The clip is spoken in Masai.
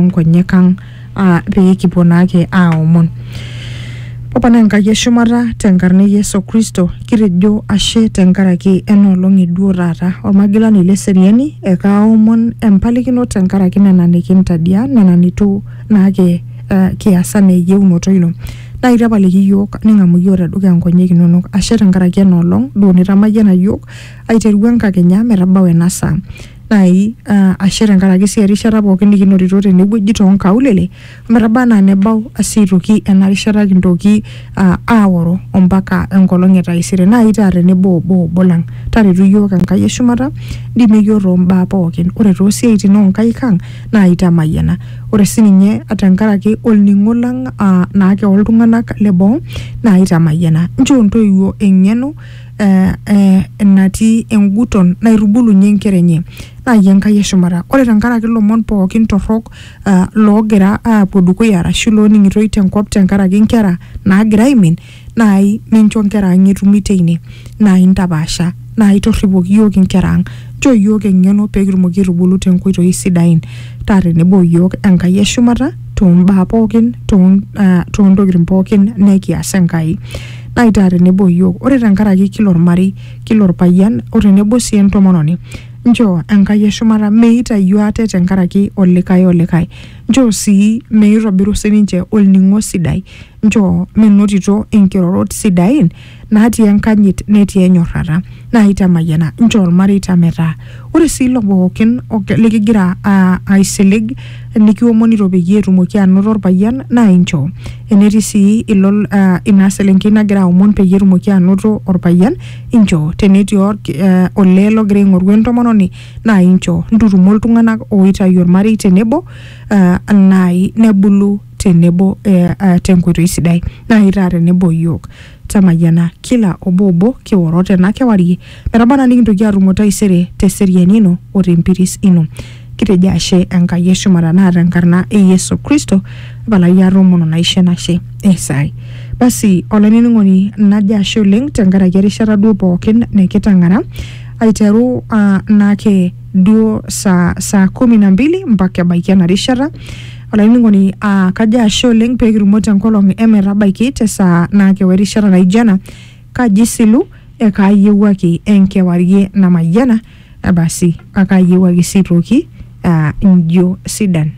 nkonyek ang aa pee kipuo naake aomon opana enkai eshumata tenkarna e yesu kristo kitejo ashe tenkaraki enoolong eduo taata olmagilani leseriani ekaaomon empalikino tenkaraki nena nikintadia nena nitu naake uh, kiasa na eyieunoto ino naa itapaliki iyiook ning'amu iyiook tedukuya nkonyek inonok ashe tenkaraki enoolong duo nitamayiana iyiook aiteru enkakenya metabau ena saa nai uh, ashe tenkaraki sii erishata pookin nikinotito tenewueji toonkaulele ometaba anaa nebau sii aitoki ena rishata kintoki uh, aoro ompaka enkolong e taisere nai taa tenebo obo obo lang taretu iyiook enkai eshumata ndimie iyiook tombaa pookin ore toosiaitin onkaik ang naa itamayiana ore sininye tenkaraki olning'o lang uh, naake oltung'anak leboo naa itamayiana nchoo ntoiwuo eng'eno eh, eh, natii enguton naitubulunye inkera enye naaji Enkai e shumata ore tenkaraki ilomon pookin torrok eh, loogira aapuo dukuya arashu looning'itoi tenkop tenkaraki inkera naagira aimin naai mincho inkera ang etumi teine naai intapaasha naai torripoki iyiook inkera ang nchoo iyiook eng'eno pee kitumoki aitubulu tenkoitoi sidain taa tenebo o iyiook Enkai e shumata toombaa pookin too ah, toontokitin pookin nekias Enkai naitaa tenebo iyiook ore tenkaraki kila ormarei kila orpayian o tenebo sii entomononi nchoo enkai eshumata meitayio ate tenkaraki olikae olikae nchoo sii meitobiru sininche olning'o sidai nchoo menotito inkirorot sidain natii enkanyit netii enyorrata naitamayiana nchoo ilmareita metaa Ore sii ilo pookin likigira aisilig nikiomonito peyie etumoki anoto orpayian naa inchoo. Enetii sii ilo ina selenkei nagira aomon peyie etumoki anoto orpayian inchoo. Tenetii olee logira aing'oru entomononi naa inchoo. Ntutumo iltung'anak oitayu ormarei tenebo naai nebulu tenebo tenkoitoi sidai naai itaa tenebo iyiook temayiana kila obo obo kioro tena kewarie metaba naa nikintoki aatumo taisere te seriani ino o te mpiris ino kitejo ashe Enkai eshumata naa tenkarna e Yesu Kristo palai aatomono naisho enashe esai basi olainining'oni najo ashe oleng tenkaraki erishata duo pookin nikitang'ara aiteru uh, naake duo saa, saa kumi na mbili mpaka ebaiki ena rishata olainining'oni aa kajo ashe oleng pee kitumo tenkolong emetabaiki te saa naa kewa erishata naijo ena kaji silu ekaayiewuaki enkewarie namayiana basi akaayiewuaki sii toki aa injio sidan